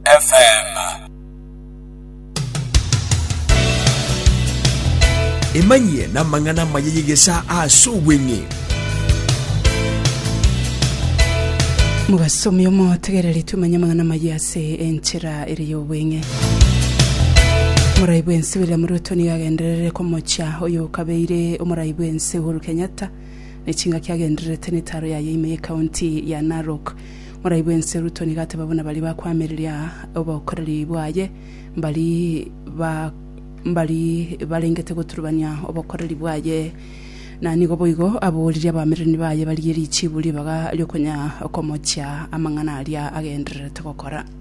FM. Emanyie n'amang'ana amaya y'egesaa ase obweng'e. Mobasomi omotegereri tumanye amang'ana amaya ase enchera ere y'obweng'e. Omorai bwense William Ruto nigo agenderere komochia oyo okabeire omorai bwense Uhuru Kenyatta ne chingaki agendererete netaro yaye ime y'ekaunti ya Narok Moraibwe ense ruto nigo ateba buna baria bakoamereria obokoreri bwaye, mbari ba mbari barengete goturubania obokoreri bwaye. Na nigo boigo aboririe abamererani baye barigie richiibu ribaga riokonya komochia amang'ana aria agendererete gokora.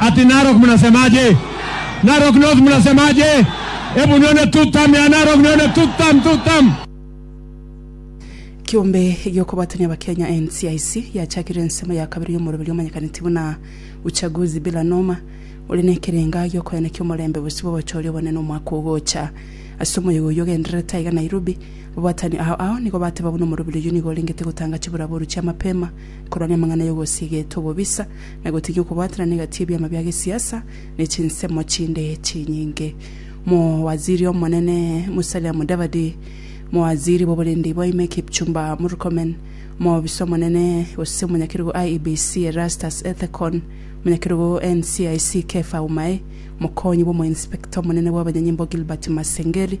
Ati Narok mnasemaje? Narok North mnasemaje? Ebu niyo ne two term ya Narok niyo ne two term, two term. Kiombe gi'okobwatania Abakenya, NCIC, yachakire ensemo ya kabere y'omoroberio omanyekaneti buna Uchaguzi Bila Noma, ore nekerenga gi'okoenekia omorembe bosio bw'obochori obonene omwaka ogocha. Ase omoyega oyio ogendererete aiga Nairobi, ababwatani ao ao nigo bateba buna omoroberio oyio nigo orengete gotanga chiburaboru chia mapema korwania amang'ana y'ogosiga eto obobisa, na gotiga okobwaterana egati y'ebiama bia gesiasa ne chinsemo chinde chinyinge. Omowaziri omonene Musalia Mudavadi, omowaziri bw'oborindi bwa ime Kipchumba Murkomen, omobisa omonene gose omonyakerogo IEBC Erastus Ethekon, omonyakerogo NCIC Kepha Umae, omokonyi bw'omoinspector omonene bw'abanyanyimbo Gilbert Masengeli,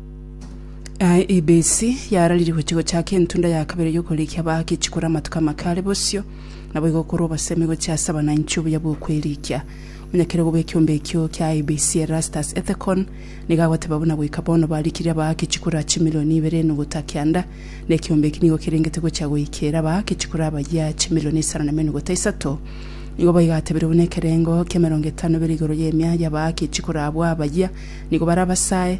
Aye ebesi yarariri gochia gochaka entunda ya kabere y'okorekia abahaka echikora amatuko amake are bosio, naboigo okorwa obosemi gochia ase abananchi obuya bw'okwerikia. Omonyakerego bw'ekiombe ekio kia IBC Erastus Ethekon nigo agoteba buna goika bono barikirie abahaka echikora chimilioni ibere enuguta kianda, na ekiombe eki nigo kerengete gochia goikera abahaka echikora abayia chimilioni isano na emenuguta isato. Nigo boigo atebire buna ekerengo ki'emerongo etano bire igoro y'emia y'abahaka echikora abwo abayia nigo barabasae,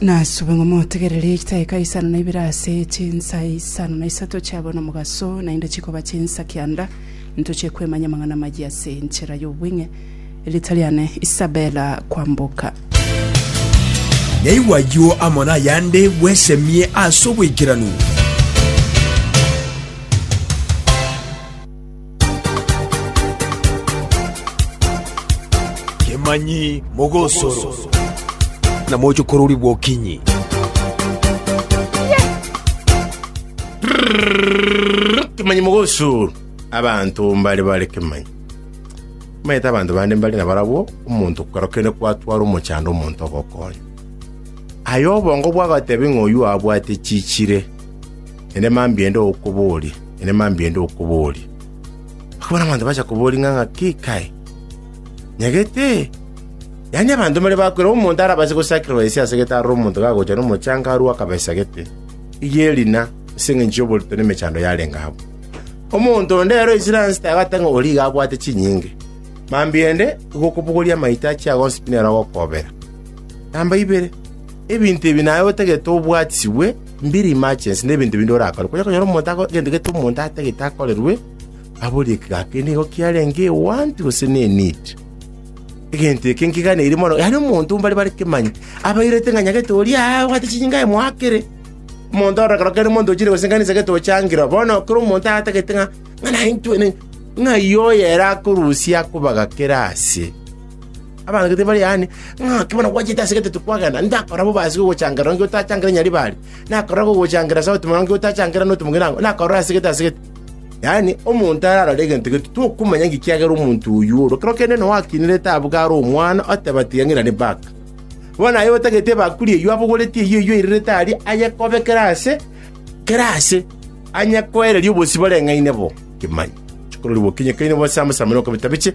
Nasube ng'a motegererie chitaika isano na ibere ase chinsa isano na isato chiabo nomogaso, naende chikoba chinsa kianda, intochie kwemanya amang'ana amayia ase enchera y'obweng'e. Erita riane Isabella Kwamboka. Naigwe ayio amo nayande bwesemie ase obwaikeranu. Kemanyi mogosoro, na moche kororigwa okinyi. Kemanyi mogosoro, abanto mbare bare kemanyi. Omanyete abanto bande mbare nabarabwo, omonto kero kende kwatwara omochando omonto ogokonya. Aye obongo bwagatebi ng'a oyio abwate chichire. Enema mbi ende okoboria, enema mbi ende okoboria. Okabona abanto bacha koboria ng'a ng'aki kae, nyagete. Yaani abanto mbare bakwera, omonto arabase gosacrifice ase gete aroro omonto gagocha nomochanga arue akabesa gete, eyio erina, ase engencho y'oborito na emechando yarenge abwo. Omonto onde ere o Israel sita agoteba ng'a oria iga abwate chinyinge. Mambia ende igo okobogoria amaito a chiagonsi pi nere agokobera. Namba ibere, ebinto ebi naye otagete obwatisibwe, Mbiri emergency nebinto binde orakore, kwonye okonyora omonto ako egento gete omonto atagete akorerwe, aborie ki gaki ere nigo kiarenge want gose ne need. Egento eke nkiganeiri mono, yaani omonto mbare bare kemanya, abairete ng'a nyagete oria aa obwate chinyinga aye moakere. Omonto ore kero kende omonto ochire gose nkanisa gete ochangira oo, bono kera omonto atagete ng'a, ng'a naintwe ne, ng'ai oyo ere akorusia akobaga kera ase. Abaganetie baria aane, Ng'ake bono gwachete ase egeteto kwagenda? Nakorora bobasi gogochangerera onge otachangereti Nyaribari? Nakorora gogochangerera ase omotimore onge otachangereti notomong'ina onge? Nakorora ase gete ase gete? Yaani, omonto ararore egento gete, tokomanya inki kiagera omonto oyio ore. Ekero kende nonya gwakinire etaabu kare omwana, oteba ati, Iga ng'irane baka. Bono aye otagete ebakuri eyio, abogoreti eyio eyio airerete aria, ayekobekere ase kera ase, anyekoererie obosibore ng'aine bo. Kimanya, chikororiwu okinyekaine bose amasamero okobita biche.